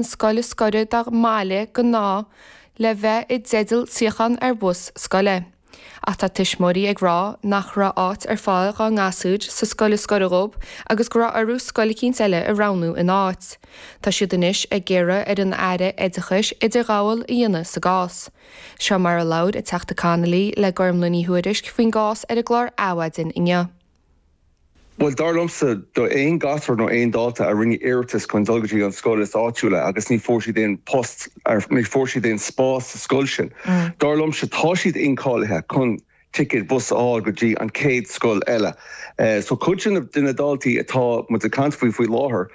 scoil is gaire dá mbaile le bheith i dteideal suíochán ar bhus scoile. Ach tá tuismitheoirí ag rá nach raibh áit ar fáil dhá ngasúir sa scoil is gaire dhóib agus go raibh orthu scoil eicínt eile a roghnú ina áit. Tá siad anois ag iarraidh ar an Aire Oideachais idirghabháil a dhéanamh sa gcás. Seo mar a labhair an Teachta Connolly le Gormfhlaith Ní Thuairisg faoin gcás ar an gclár Adhmhaidin inniu. Bhuel, dar liomsa, aon ghasúr nó aon dalta a rinne iarratas chun dul go dtí an scoil is áitiúla agus ní fuair siad aon post, ní fuair siad aon spás sa scoil sin, dar liomsa, tá siad incháilithe chun ticéad bus a fháil go dtí an chéad scoil eile. So, cuid de na daltaí atá muid ag caint faoi faoi láthair,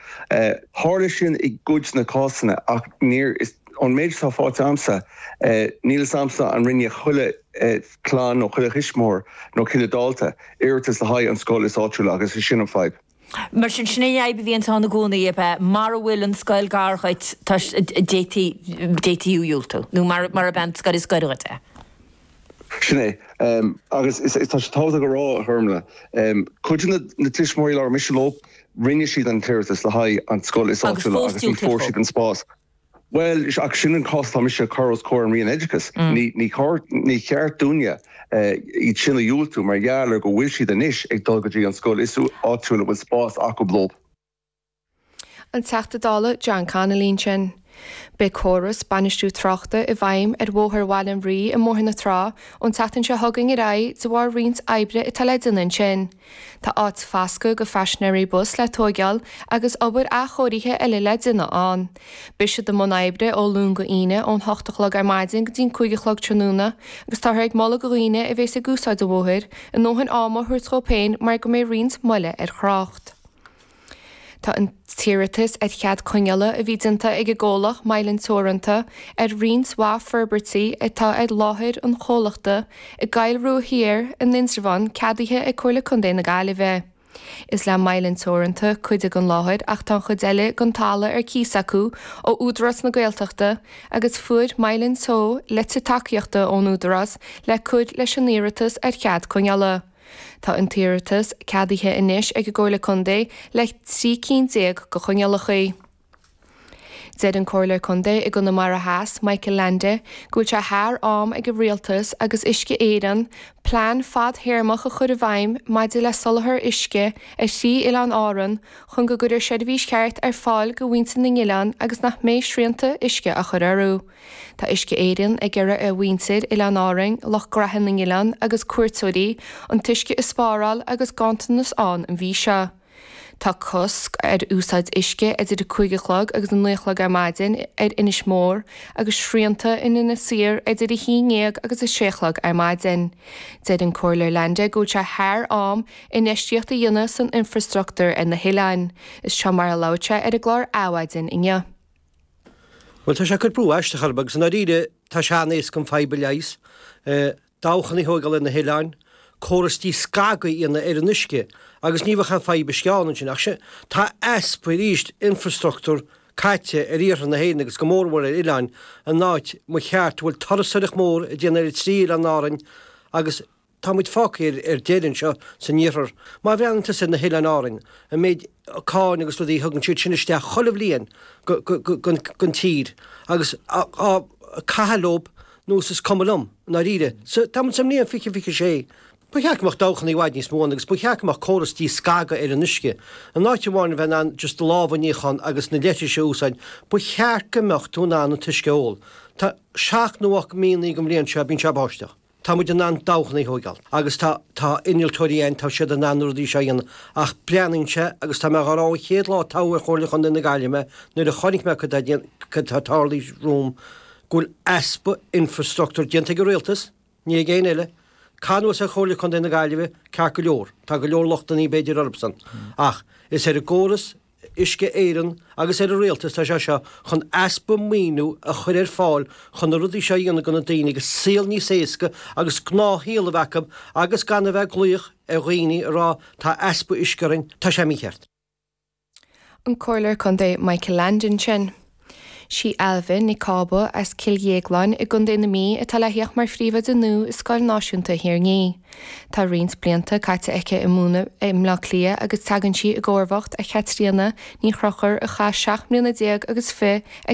tharla sin i gcuid de na cásanna ach níor, an méid atá faighte agamsa, níl a fhios agamsa an rinne chuile, clann nó chuile thuismitheoir nó chuile dhalta, iarratas le haghaidh an scoil is áitiúla agus is sin an fhadhb. Mar sin, sin é an fhadhb a bhíonns ann i gcónaí, ab ea? Mara bhfuil an scoil gar dhuit, tá, d'fhéadfaí, d'fhéadfaí thú a dhiúltú, nó mar, mara mbeidh an scoil is gaire dhuit, eh? Sin é. Agus is, tá sé tábhachtach a rá, a Ghormfhlaith, cuid de na, na tuismitheoirí a labhair mise leo, rinne siad an t-iarratas le haghaidh an scoil is áitiúla agus ní fuair siad an spás. Bhuel, sin an cás atá mise ag cur os comhair an Roinn Oideachais. Ní cheart dúinn iad sin a dhiúltú mar gheall ar go bhfuil siad anois ag dul go dtí an scoil is áitiúil a bhfuil spás acu dóibh. An Teachta Dála John Connolly ansin. Beidh córas bainistiú tráchta i bhfeidhm ar Bhóthar Bhaile an Rí i mBóthar na Trá ón tseachtain seo chugainn ar aghaidh de bharr roinnt oibre atá le déanamh ansin. Tá áit foscaidh do phaisinéirí bus le tóigeáil agus obair athchóirithe eile le déanamh ann. Beidh siad i mbun oibre ó Luan go Aoine ón hocht a chlog ar maidin go dtí'n cúig a chlog tráthnóna agus táthar ag moladh do dhaoine a bhéas ag úsáid an bhóthair a ndóthain ama a thabhairt dhób féin mar go mbeidh roinnt moille ar thrácht. Tá an t-iarratas ar chead coinneála a bhí déanta ag an gcomhlacht Mylan Teoranta ar roinnt mhaith forbairtí atá ar láthair an chomhlachta i gCoill Rua Thiar in Indreabhán ceadaithe ag Comhairle Contae na Gaillimhe. Is le Mylan Teoranta cuid den láthair ach tá an chuid eile den talamh ar cíos acu ó Údarás na Gaeltachta agus fuair Mylan Teo litir tacaíochta ón Údarás le cur leis an iarratas ar chead coinneála. Tá an t-iarratas ceadaithe anois ag an gComhairle Contae le trí cinn déag de choinníollacha. Deir an Comhairleoir Contae i gConamara Theas, Michael Leainde, go bhfuil sé thar am ag an Rialtas agus Uisce Éireann plean fadthéarmach a chur i bhfeidhm maidir le soláthar uisce ar thrí oileán Árann chun go gcuirfear seirbhís cheart ar fáil do mhuintir na n-oileán agus nach mbeidh srianta uisce á gcur orthu. Tá Uisce Éireann ag iarraidh ar mhuintir Oileáin Árainn, lucht graithe na n-oileán agus cuairteoirí, an t-uisce a spáráil agus ganntanas ann an mhí seo. Tá cosc ar úsáid uisce idir a cúig a chlog agus a naoi a chlog ar maidin ar Inis Mór agus srianta in Inis Oírr idir a haon dhéag agus a sé a chlog ar maidin. Deir an Comhairleoir Leainde go bhfuil sé thar am infheistíocht a dhéanamh san infreastruchtúr ar na hoileáin. Is seo mar a labhair sé ar an gclár Adhmhaidin inniu. Bhuel, tá sé ag cur brú aisteach orthu, agus i ndáiríre, tá sé an-éasca an fadhb a leigheas. Dabhchanna a thóigeáil ar na hoileáin, córas díscagadh a dhéanamh ar an uisce, agus ní bheadh aon fadhb uisce ann ansin. Ach sin, tá easpa, arís, infrastruchtúr caite ar iarthar na hÉireann, agus go mór mhór ar oileáin, an áit, ba cheart, a bhfuil turasoireacht mhór ag déanamh ar an trí oileán Árainn agus. Tá muid fágtha ar deireadh anseo san iarthar. Má bhreathnaíonn tusa ar na hOileáin Árainn, an méid cáin agus rudaí a thugann siad sin isteach chuile bhliain gon tír, agus á caitheamh leob, nós, is cuma liom, i ndáiríre. Sea, tá muid sa mbliain fiche fiche a sé. Ba cheart go mbeadh dabhchanna i bhfad níos mó ann agus ba cheart go mbeadh córas díscagadh ar an uisce. In áit amháin a bheith in ann just lámha a níochán agus na leithris a úsáid, ba cheart go mbeadh tú in ann an t-uisce a ól. Tá seacht nó ocht míonnaí den bhliain seo a bhíonn sé ag báisteach. Tá muid in ann dabhchanna a thóigeáil, agus tá, tá innealtóirí ann, tá siad in ann na rudaí seo a dhéanamh. Ach breathnaíonn sé, agus tá mé dhá rá ón chéad lá a toghadh ar Chomhairle Chontae na Gaillimhe mé, nuair a chonaic mé cad tá, cad tá tarlaithe romham, go bhfuil easpa infreastruchtúir déanta ag an Rialtas, ní ag éinne eile. Caitheamh anuas ar Chomhairle Chontae na Gaillimhe, ceart go leor, tá go leor lochtannaí b'fhéidir orthusan, ach is ar an gcóras a Uisce Éireann agus ar an Rialtas atá sé seo chun easpa maoiniú a chur ar fáil chun na rudaí seo a dhéanamh do na daoine agus saol níos éasca agus gnáthshaol a bheith acu agus gan a bheith ag glaoch ar dhaoine ag rá tá easpa uisce orainn. Tá sé mícheart. An Comhairleoir Contae Michael Leainde ansin. Sí Ailbhe Nic Cába as Cill Dhéagláin i gContae na Mí atá le thíocht mar phríomhoide nua i Scoil Náisiúnta Thír an Fhia. Tá roinnt blianta caite aici ag múineadh i mBleá Cliath agus tagann sí i gcomharbacht ar Chaitríona Ní Chonchúir a chaith seacht mbliana déag agus fiche ag